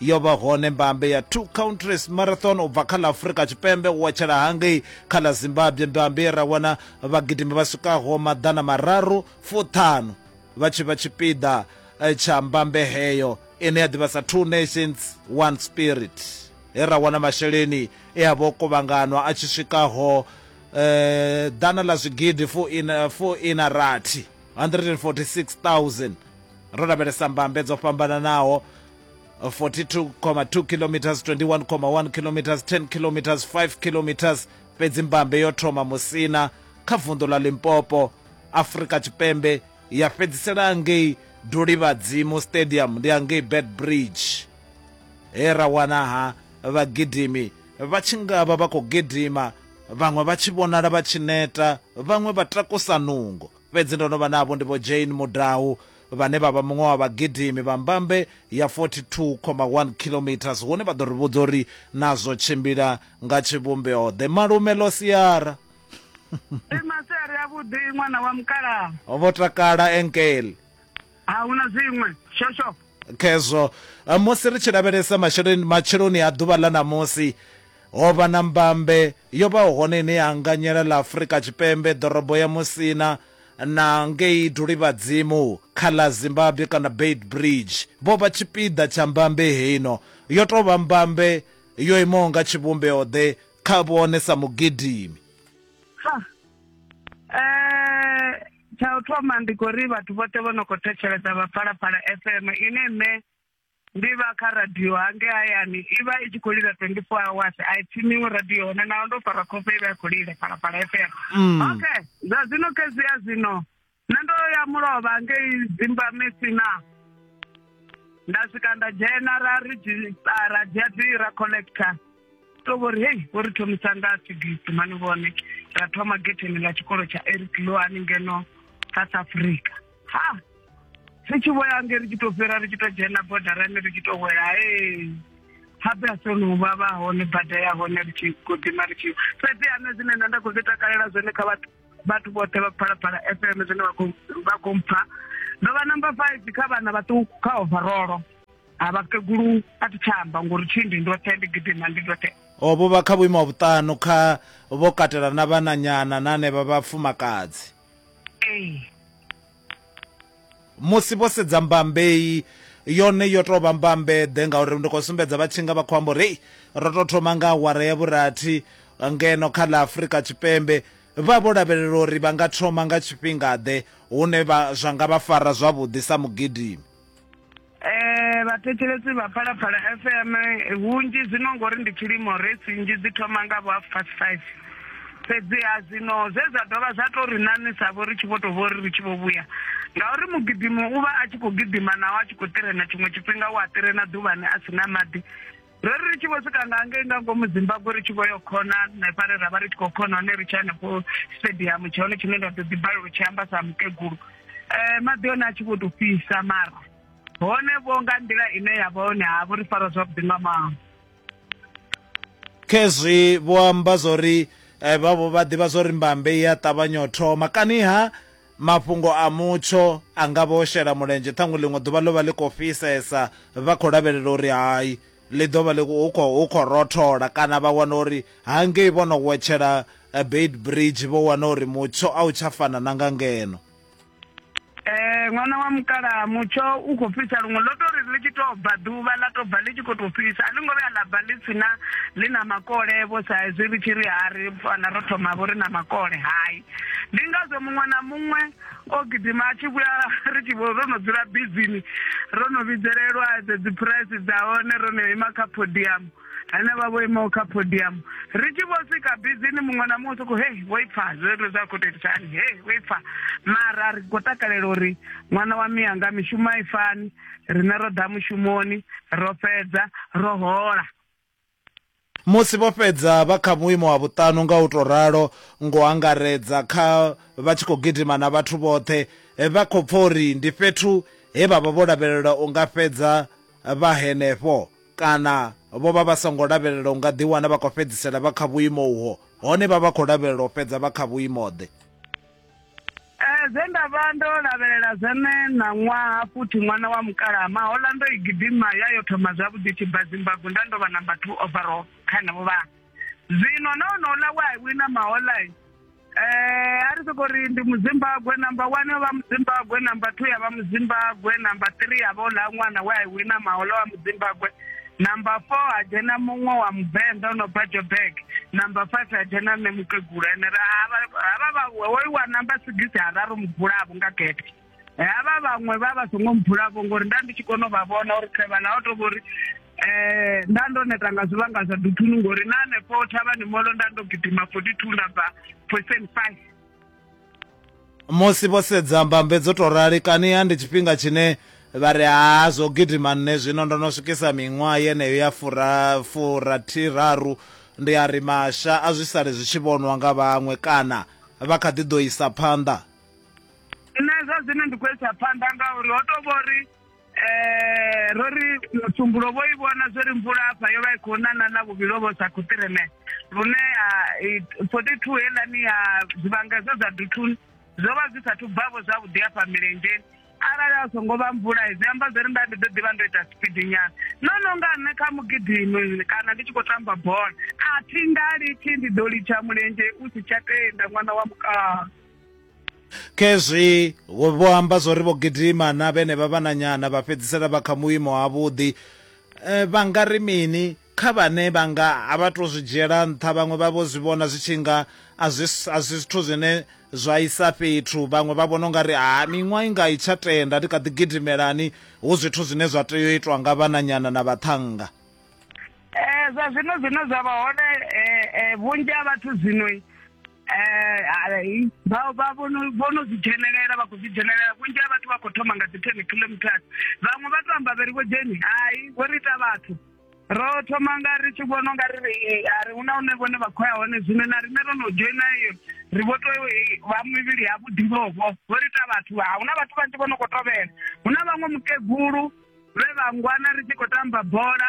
yo vha hone mbambe ya two countries marathon u bva kha ḽa afurika tshipembe u watshela hangei kha ḽa zimbabwe mbambe ra wana vhagidimi vha swikaho maḓana mararu fuṱhanu vha tshi vha tshipiḓa eh, tsha mbambe heyo ine ya ḓivha sa two nations one spirit he ra wana masheleni e a vha o kuvhanganwa a tshi swikaho eh, ḓana ḽa zwigidi fu ina fu ina rathi 146000 ro lavhelesa mbambe dzo fhambananaho 42,2 kilometers 21,1 kilometers 10 kilometers 5 kilometers fhedzi mbambe yo thoma musina kha vunḓu ḽa limpopo afrika tshipembe ya fhedzisela ngei dulivhadzimu stadium ndi angei bed bridge he ra wana ha vhagidimi vha tshi nga vha vha khou gidima vhaṅwe vha tshi vhonala vha tshi neta vhaṅwe vha takusa nungo fhedzi ndo no vha navho ndi vho jane mudau vhane vha vha muṅwe wa vhagidimi vha mbambe ya 42,1 kilometres hune vha ḓo ri vhudza uri na zwo tshimbila nga tshivhumbeo ḓe malume ḽo siara Ndi masiari a vhuḓi ṅwana wa mukalaha. ho vho takala enkele A huna zwiṅwe. Shosho. khezwo Eh, musi ri tshi lavhelesa masheleni matsheloni a ḓuvha ḽa ṋamusi Ho vha na mbambe yo vhaho hone ine ya anganyela ḽa Afrika Tshipembe, ḓorobo ya Musina, na ngei Dulivhadzimu kha ḽa Zimbabwe kana Beitbridge. Vho vha tshipiḓa tsha mbambe heino. Yo tou vha mbambe yo imaho nga tshivhumbeo-ḓe kha vhone sa mugidimi. Ha! Eh, tsha u thoma ndi khou ri vhathu vhoṱhe vho no khou thetshelesa vha Phalaphala FM, ine nṋe ndi vha kha radio hange hayani i vha i tshi khou lila 24 hours a i tshimiwi radio hone naho ndo fara khofe i vha i khou lila phalaphala fm mm. okay zwa zwino khezia zwino nṋe ndo ya mulovha ngei dzimbamesina nda swika nda dzhena ra redzhisitara dzia dzi ra collector to vhori hei vho ri thomisa nga sigisi mani vhone ra thoma getheni ḽa tshikolo tsha eric lo haningeno south africa ha ri tshi vho ya nge ri tshi to fhira ri tshi to dzhena bodarani ri tshi to wela ee habe a sono u vhavha hone bada ya hone ri tshi godima ri tshi fhedzi ane zwine nṋe nda khou zwi takalela zwone kha vhathu vhathu vhoṱhe vha phalaphala f m zwine vha khou mpha ndo vha number five kha vhana vhaṱuku kha overolo ha vhakegulu a thi tsha amba ngori tshindi ndi roṱhe ndi gidima ndi roṱhe o vho vha kha vhuimo ha vhuṱanu kha vho katela na vhananyana na anevha vhafumakadzi musi vho sedza mbambei yone yo tou vha mbambeḓe ngauri ndi khou sumbedza vha tshinga vha khou amba uri ro tou thoma nga awara ya vhurathi ngeno kha ḽa afurika tshipembe vha vho lavhelela uri vha nga thoma nga tshifhingaḓe hune vha zwa nga vha fara zwavhuḓi sa mugidimi Eh, vhathetshelesi vha phalaphala fm eh, vhunzhi zwino ngori ndi tshilimo resi nnzhi dzi thoma nga vho half past five fhedziha zwino zwe zwa dovha zwa to ri ṋaṋisa vho ri tshi vho to vho ri ri tshi vho vhuya ngauri mugidimo u vha a tshi khou gidima naho a tshi khou tirena tshiṅwe tshifhinga u a tirena ḓuvhani a si na maḓi ro ri ri tshi vho swika nga ngei nga ngomu zimbabwe ri tshi vho yo khona hanefha re ra vha ri tshi khou khona hone ri tshi hanefho stadium tsha hone tshine nda ḓo ḓi balelwa tshi amba sa mukegulu um maḓi one a tshi vho to fhisa mara hone vho nga nḓila ine ya vha hone ha vho ri fara zwavhuḓi nga maho khezwi vho amba zwa uri um vhavho vha ḓivha zwa uri mbambe i a ṱavhanya u thoma kani ha Mafhungo a mutsho a nga vha o shela mulenzhe, ṱhaṅwe ḽiṅwe ḓuvha ḽo vha ḽi khou fhisesa, vha khou lavhelela uri hai ḽi ḓo vha ḽi khou, hu khou, hu khou rothola, kana vha wana uri hangei vho no wetshela Beitbridge vho wana uri mutsho a u tsha fana na nga ngeno. Ee, ṅwana wa mukalaha, mutsho u khou fhisa luṅwe. Ḽo tou ri ḽi tshi tou bva ḓuvha ḽa tou bva ḽi tshi khou tou fhisa, a ḽi ngo vhuya ḽa bva ḽi si na, ḽi na makole-vho sa hezwi ri tshi ri ha ri fana ro thoma-vho ri na makole, hai. ndi ngazwo muṅwe na muṅwe o gidima a tshi vhuya ri tshi vho ro no dzula bizini ro no vhidzelelwa dzedzi phuraisi dza hone ro no ima kha podium ane vha vho imaho kha podium ri tshi vho swika bizini muṅwe na muṅwe soko hei vho ipfa zwezwo zwa khou toitisa hani hei vho ipfa mara ri khou takalela uri ṅwana wa miyanga mishumo a i fani rine ro ḓa mushumoni ro fhedza ro hola Musi vho fhedza vha kha vhuimo ha vhuṱanu nga u tou ralo ngo u angaredza kha vha tshi khou gidima na vhathu vhoṱhe, vha khou pfa uri ndi fhethu he vha vha vho lavhelela u nga fhedza vha henefho kana vho vha vha songo lavhelela u nga ḓiwana vha khou fhedzisela vha kha vhuimo uho, hone vha vha khou lavhelela u fhedza vha kha vhuimo-ḓe? Eh, zwe nda vha ndo lavhelela zwone ṋaṅwaha futhi ṅwana wa mukalaha mahola ndo i gidima ya yo thoma zwavhuḓi tshi bva zimbabwe nda ndo vha number two overall kha henevho vha zwino na onouḽa we a wina mahola um a ri soko ri ndi muzimbabwe number one yo vha muzimbabwe number two ya vha muzimbabwe number three ya vha oḽa ṅwana we a wina mahola wa muzimbabwe Number four ha dzhena muṅwe wa muvenḓa o no bva joburg number five ha dzhena nṋe mukegula ene ra havha vha hoyu wa number sigisi ha raru mubulavo nga gete havha vhaṅwe vha vha songo mubulavo ngori nda ndi tshi kona u vha vhona uri khevha na o to vhori eh nda ndo neta nga zwivhanga zwa duthunu ngori na hanefho thavhani molo nda ndo gidima 42 nda bva percent five musi vho sedza mbambe dzo tou rali kaniha ndi tshifhinga tshine vha ri ha zwo gidima nṋe zwino ndo no swikisa miṅwaha yeneyo ya fura furathiraru ndi a ri masha a zwi sale zwi tshi vhonwa nga vhaṅwe kana vha kha ḓi ḓo isa phanḓa nṋe zwa zwino ndi khou isa phanḓa ngauri ho tou vho ri Eh, ro ri mutumbulo vho i vhona zwo ri mvula afha yo vha i khou nana na vhuvhilo vho sa khuṱireme lune forty two helani ya zwivhangedzo zwa duthuni zwo vha zwi sathu bvavho zwavhuḓi afha milenzheni arali a songo vha mvula zwi amba zwo ri nda ndi ḓo ḓivha ndo ita spidi nyana no no nga nṋe kha mugidimi kana ndi tshi khou tamba bola a thi nga litshi ndi ḓo litsha mulenzhe u si tsha tenda ṅwana wa mukala khezwi vho amba zwo ri vho gidima na vhene vha vhananyana vha fhedzisela vha kha muimo ha vhuḓi eh, vha nga ri mini kha vhane vha nga a vha to zwi dzhiela nṱha vhaṅwe vha vho zwi vhona zwi tshi nga a zwi zwithu zwine zwa isa fhethu vhaṅwe vha vhona ungari ha miṅwaha i nga i tsha tenda ndi kha ḓi gidimelani hu zwithu zwine zwa tea u itwa nga vhananyana na vhaṱhannga um zwa zwino zwine zwa vha hone um vhunzhi ha vhathu zwinoi eh, vha vha vho no zwi dzhenelela vha khou zwi dzhenelela vhunzhi ha vhathu vha khou thoma nga dzi ten kilometers vhaṅwe vha to amba vheri vho dzheni hai vho ri ita vhathu ro thoma nga ri tshi vhona nga ri eh, a ri huna hune vhone vha khou ya hone zwino na rine ro no dzhoina iyo ri vho to eh, vha mivhili ya vhuḓivhovho vho ri ita vhathu ha huna vhathu vhanzhi vho no khou tovhela huna vhaṅwe mukegulu vhe vha ngwana ri tshi khou tamba bola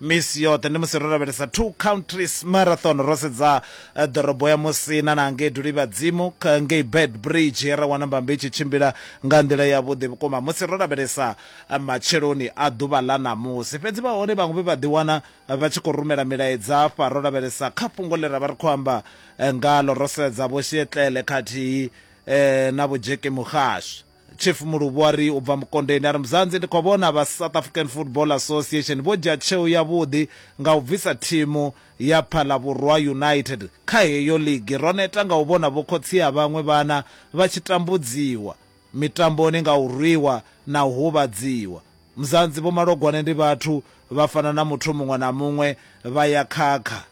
Misi yoṱhe ndi musi ro lavhelesa Two Countries Marathon, ro sedza ḓorobo ya Musina na ngei Dulivhadzimu ngei Beitbridge, ra wana mbambe i tshi tshimbila nga nḓila yavhuḓi vhukuma musi ro lavhelesa matsheloni a ḓuvha ḽa ṋamusi. Fhedzi vha hone vhaṅwe vhe vha ḓiwana vha tshi khou rumela milaedza afha ro lavhelesa kha fhungo ḽe ra vha ri khou amba ngaḽo, ro sedza Vho Sietlele khathihi na Vho Jackie Mugashe. Chief Muluvhu a ri u bva Mukondeni a ri Muzanzi ndi khou vhona vha South African Football Association vho dzhia tsheo yavhuḓi nga u bvisa thimu ya Phalabvhurwa United kha heyo ligi. Ro neta nga u vhona vhokhotsi a vhaṅwe vhana vha tshi tambudziwa mitamboni nga u rwiwa na u huvhadziwa. Muzanzi Vho Malogwane ndi vhathu vha fana na muthu muṅwe na muṅwe vha ya khakha.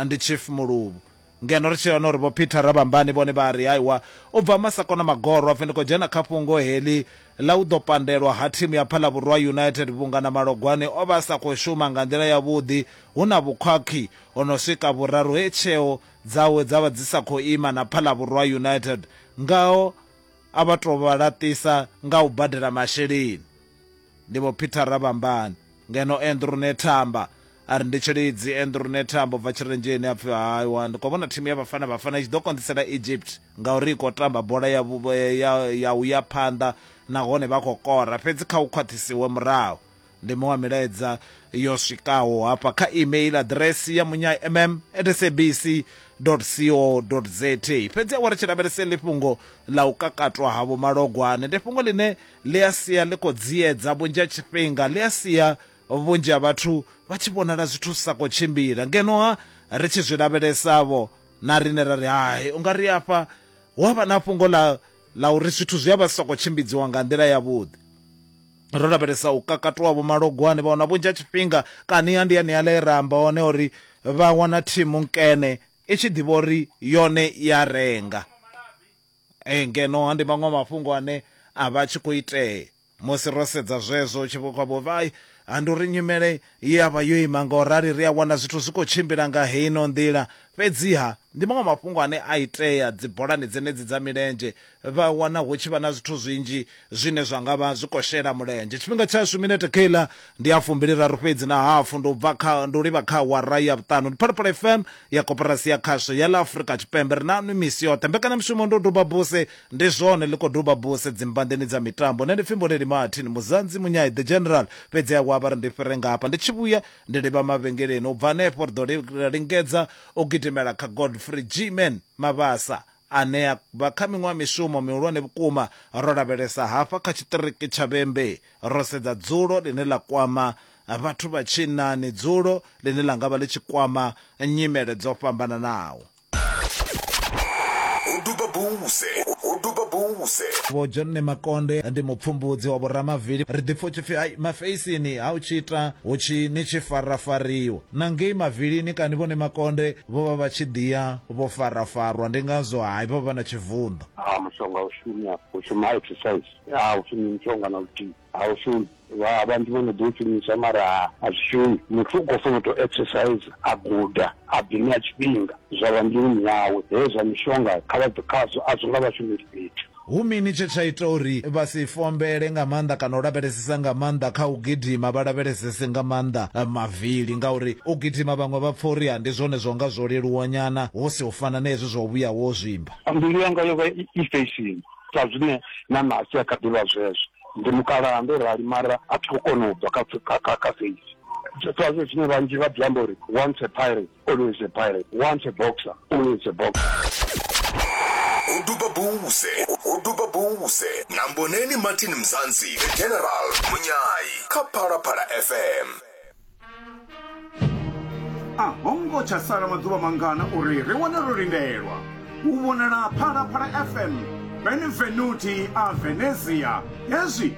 ndi chief muluvhu ngeno ri tshi wana uri vho peter rabambani vhone vha ri haiwa u bva masakona magoro apfi ndi khou dzhena kha fhungo heḽi ḽa u ḓo pandelwa ha thimu ya phalavhurwa united vhunga na malogwane o vha a sa khou shuma nga nḓila yavhuḓi hu na vhukhwakhwi o no swika vhuraru he tsheo dzawe dza vha dzi sa khou ima na phalavhurwa united ngaho a vha tou vha laṱisa nga u badela masheleni Ndi Vho Peter Rabambani, ngeno Andrew Nethamba a ri ndi Tshilidzi. Andrew Nethamba u bva Tshirenzheni a pfi, Aewa, ndi khou vhona thimu ya Bafana Bafana i tshi ḓo konḓisela Egypt ngauri i khou tamba bola ya, ya, ya u ya phanḓa nahone vha khou kora, fhedzi kha hu khwaṱhisiwe murahu. Ndi miṅwe ya milaedza yo swikaho hafha kha email aḓiresi ya munyaimm@sabc.co.za. Fhedzi awara tshi lavhelese ḽi fhungo ḽa u kakatwa ha Vho Malogwane. Ndi fhungo ḽine ḽi a sia ḽi khou dziedza vhunzhi ha tshifhinga, ḽi a sia vhunzhi ha vhathu vha tshi vhonala zwithu zwi sa khou tshimbila. Ngeno-ha ri tshi zwi lavhelesa-vho, na riṋe ra ri, Hai, u nga ri afha hu a vha na fhungo ḽa ḽa uri zwithu zwi a vha zwi sa khou tshimbidziwa nga nḓila yavhuḓi. Ro lavhelesa u kakatwa ha vhomalogwane, vha wana vhunzhi ha tshifhinga kani ha ndi haneaḽa e ra amba hone uri vha wana thimu nkene i tshi ḓivha uri yone i a renga. Ee, ngeno ha ndi maṅwe mafhungo ane a vha a tshi khou itea. Musi ro sedza zwezwo, hu tshi vha kha vhuvhi, ha ndi uri nyimele ye ya vha yo ima nga u rali, ri a wana zwithu zwi khou tshimbila nga heino nḓila. Fhedziha, ndi maṅwe mafhungo ane a itea dzibolani dzenedzi dza milenzhe. Vha wana hu tshi vha na zwithu zwinzhi zwine zwa nga vha zwi khou shela mulenzhe. Tshifhinga tshashu, minete kheiḽa ndi ya fumbiliraru fhedzi na hafu. Ndi u bva kha, ndi u livha kha awara ya vhuṱanu. Ndi Phalaphala FM ya Koporasi ya Khasho ya ḽa Afrika Tshipembe. Ri naṋwi misi yoṱhe. Mbekanyamushumo ndi u duba buse. Ndi zwone, ḽi khou duba buse dzimbanḓeni dza mitambo. Nṋe ndi pfi Mboneni Martin Muzanzi Munyai, The General, fhedziha wa vha ri ndi fhire nga hafha. Ndi tshi vhuya ndi livha mavhengeleni. U bva henefho ri ḓo lingedza u gidimela kha Godfrey G-Man Mabasa. ane a bva kha miṅwe ya mishumo mihulwane vhukuma. Ro lavhelesa hafha kha tshiṱiriki tsha Vhembe, ro sedza dzulo ḽine ḽa kwama vhathu vha tshinnani, dzulo ḽine ḽa nga vha ḽi tshi kwama nyimele dzo fhambananaho. Ho duba buze, ho duba buze. Vho John Nemakonde ndi mupfumbudzi wa vhoramavili. Ri ḓi pfa hu tshi pfi, Hai, mafeisini ha u tshi ita hu tshi ni tshi farafariwa. Na ngei mavilini kani Vho Nemakonde Vho vha vha tshi ḓi ya vho farafarwa, ndi ngazwo hai vha vha na tshivunḓa. A mushonga a u shumi afha, hu shuma exercise. A hu shumi mushonga na luthihi, a u shumi. Vha vhanzhi vho no ḓi u shumisa mara a zwi shumi. Muthu u khou fanela u tou exercise, a guda, a ḓi ṋea tshifhinga zwa vha mbiluni yawe. Hezwi zwa mishonga kha vha bve khazwo, a zwo nga vha shumeli fhethu. Hu mini tshe tsha ita uri vha si fombele nga maanḓa kana u lavhelesesa nga maanḓa kha u gidima, vha lavhelesese nga maanḓa mavili? Ngauri u gidima vhaṅwe vha pfa uri ndi zwone zwa nga zwo leluwa nyana, hu si u fana na hezwi zwa u vhuya wo zwimba. Mbilu yanga yo vha i feisini, sa zwine na ṋahasi ya kha ḓi vha zwezwo. Ndi mukalaha, ndo rali, mara a thi khou kona u bva kha feisi. Zwenezwo zwine vhanzhi vha ḓi amba uri once a pirate. Always a pirate, once a boxer, always a boxer. uduba buze uduba buze na mboneni martin mzansi the general munyayi kha phalaphala fm a ho ngo tsha sala maḓuvha mangana uri ri wane ro lindelwa u vhonala phalaphala fm benvenuti a venezia hezwi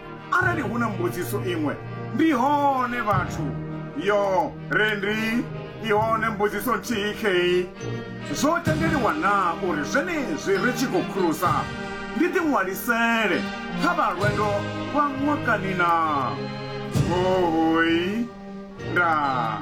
Arali hu na mbudziso iṅwe, ndi hone vhathu. Yo, re ndi i hone mbudziso nthihi khei. Zwo tendeliwa na uri zwenezwi ri tshi khou khurusa, ndi ḓiṅwalisele kha vha lwendo lwa ṅwakani na? Hoi. Ndaa.